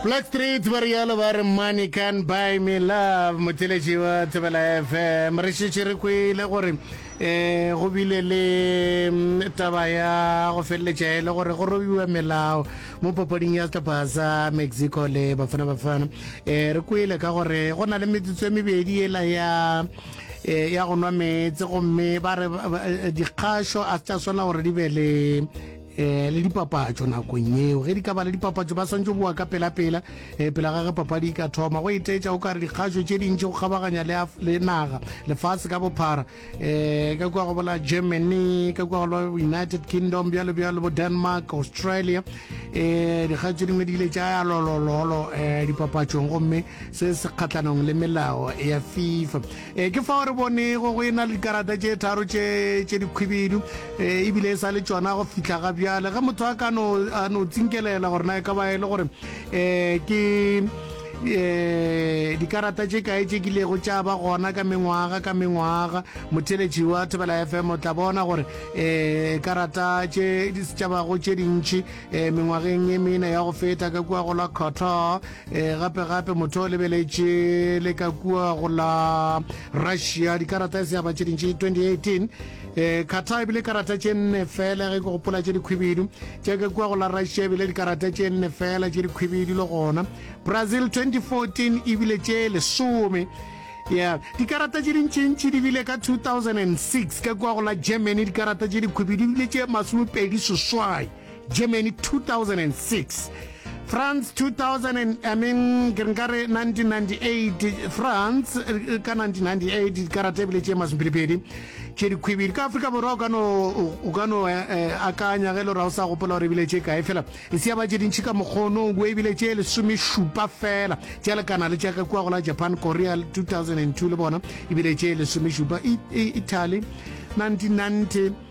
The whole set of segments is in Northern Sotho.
Black Street ba realo ba re Money can't buy me love Motheletši wa Thobela FM Re šetše re kwele gore um go bile le taba ya go feleletša e le gore go robiwa melao mo papading ya sehlopha sa Mexico le Bafana Bafana um re kwele ka gore go na le metsotso e mebedi ela ya e ya go nwa meetse gomme ba re dikgašo a se tša swana gore di be le eh, le dipapatšo nakong yeo ge di ka ba le dipapatšo ba swantse boa ka pelapela eh, pela gage papadi e ka thoma go etetša o ka re dikgašo tše dintši go kgabaganya le, le naga lefase ka bophara eh, ka kua go bola germany ka kua go united kingdom bjalo bjalo bo denmark australia eh, dikgašo tše dingwe di ile tša ya lolololo eh, dipapatšong gomme se se kgatlhanong le melao ya fifa E, ke fao re bonego go e na le dikarata tše tharo tše tše dikhwibidu e, ebile e sa le tšona go fihla ga bjale ge motho a ka no a no tsinkelela gore na e ka ba e le gore um ke um dikarata tše kae tše kilego tša ba gona ka mengwaga ka mengwaga motheletši wa thebela fm o tla bona gore um karata tše tša bago tše dintšhi um mengwageng e mene ya go feta ka kua go la cotto E, gape-gape motho o lebeletše le ka kua go la russia dikarata e se yaba tše dintši 2018 e kgatha ebile karata tše nne fela ge ke gopola tše dikhwibidu tše ka kua go la russia ebile dikarata tše nne fela tše dikhwibidu le gona brazil 2014 ebile tše lesome yeah dikarata tše dintšintši di bile ka 2006 ka kua go la germany dikarata tše dikhwibidu ebile tše masomepedi seswai Germany 2006 France 2000 I mean ke nka re 1998 France eh, ka 1998 dikarate ebile tše masomphedipedi tše dikhwibedi ka Afrika Borwa o ka no eh, eh, akanya ge le ra o sa gopola gore ebile tše kae fela e se ya ba tše dintšhi ka mokgono o ebile tše lesomešupa fela tša lekana le tša ka kua go la Japan Korea 2002 le bona ebile tše lesomešupa Italy 1990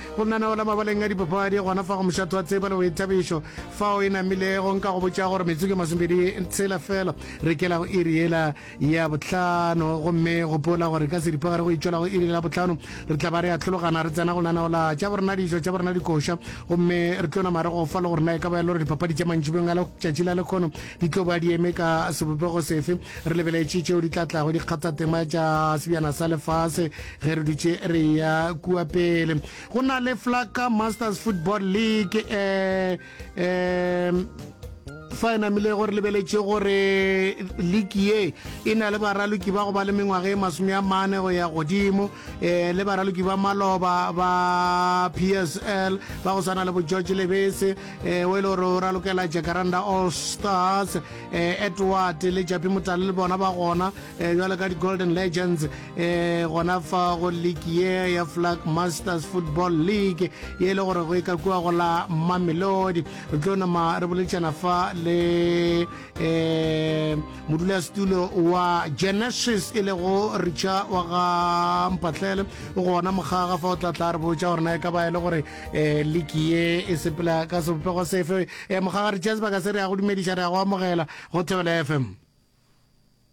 Go nanaola mabaleng a dipapadi gona fa go mošatho wa tseba le boithabišo fao e namilego. Nka go botša gore metsotso masomebedi tshela fela re kela go iri yela ya bohlano, gomme gopola gore ka seripagare go itšola go iri la bohlano re tla ba re atlhologana re tsena go nanaola tša borena dijo tša borena dikoša, gomme re tlo nama re gofa le gore na e ka ba e le gore dipapadi tša mantšhibeng a letšatši la lekgono di tlo ba di eme ka sebopego sefe. Re lebeletše tšeo di tla tlago dikgathatema tša sebjana sa lefase. ge re dutše re ya kua pele go na le flaka masters football league um fa e namile gore lebeletše gore league ye e na le baraloki ba go ba le mengwaga e masome a mane go ya godimo um le baraloki ba maloba ba p s l ba go swana le bo george lebese um o e le gore o ralokela jacaranda all stars um edward le japi motale le bona ba gona um jwale ka di-golden legends e gona fa go league ye ya flag masters football league ye e le gore go e ka kua go la mamelodi re tlo nama re boletšana fa le um modulasetulo wa genesis e lego richa wa ga mpatlele o gona mogaga fa o tla tla re botša gore na e ka ba e le gore um league ye e sepela ka sebopego sefe um mogaga richa sebaka se re ya go dumediša re ya go amogela go thebela fm